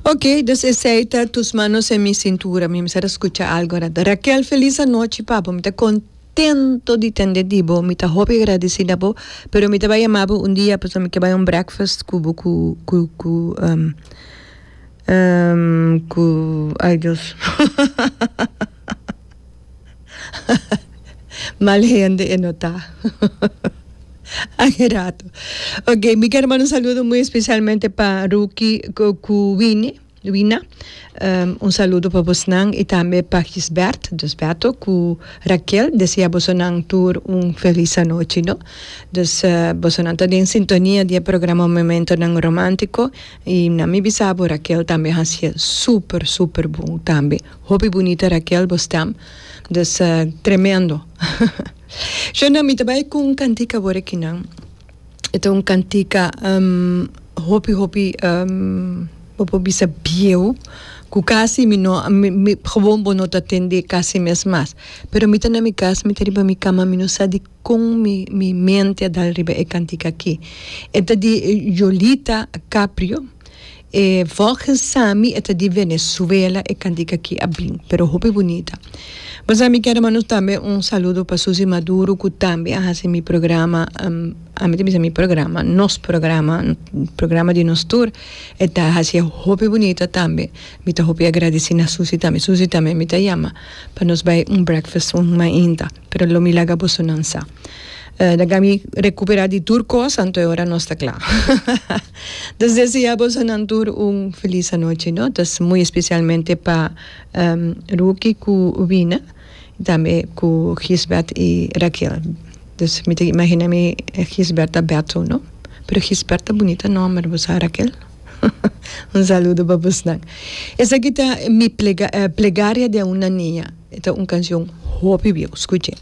Ok, dus esei ta tus manos en mi sintura. Mi mester a scucha algo arat. Raquel, feliz anochi, papa. Mi ta contento di tende di bo. Mi ta hopi agradeci na bo, pero mi ta bay yama bo un dia pasobra mi ke bay un breakfast cu bo cu, cu, cu, cu, ay Dios. Mal hende e no ta. Aye rato. Ok, mi quiero mandar un saludo muy especialmente para Ruki cu Wini. Wina, um, un saludo para vosnan y también para Gisbert, dus Berto, cu Raquel. Desea vosnan tur un feliz anochi, no? Dus uh, vosnan ta den sintonia di e programa Momentonan Romantico y na mi bisa bo Raquel también hacié super, super bon también. Hopi bunita Raquel bo stem dus tremendo Sho nan mi ta bay cu un cantica awor aki nan e ta un cantica hopi hopi bo por bisa bieu cu casi mi no mi gewoon bo no ta tende casi mes mas pero mi ta na mi cas mi ta riba mi cama mi no sa di Con mi mi mente a dal riba e cantica aki. E ta di Yolita Caprio. E volgens Sami e ta di Venezuela e cantica aki a bin. Pero hopi bunita. Bo sa mi kier manda tambe un saludo pa Susie Maduro cu tambe a hasi mi programa, ami ta bisa mi programa, nos programa, programa di nos tur. E ta hacié hopi bunita tambe. Mi ta hopi agradeci na Susie tambe. Susie tambe mi ta yama pa nos bay un breakfast un mainta. Pero lo mi laga bosonan sa. Ta kaba mi recuperá di tur cos, anto e ora nos ta cla. Nos desea bosonan tur un feliz anochi, no? Ta muy especialmente pa Ruki cu Wina, y tambe cu Gisbert y Raquel. Dus mi ta imagina mi Gisbert ta Berto, no? Pero Gisbert ta bunita nomber, bo sa Raquel? Un saludo pa bosnan. Esaki ta Mi Plegaria de una niña. E ta un cancion hopi bieu. Scuch'e.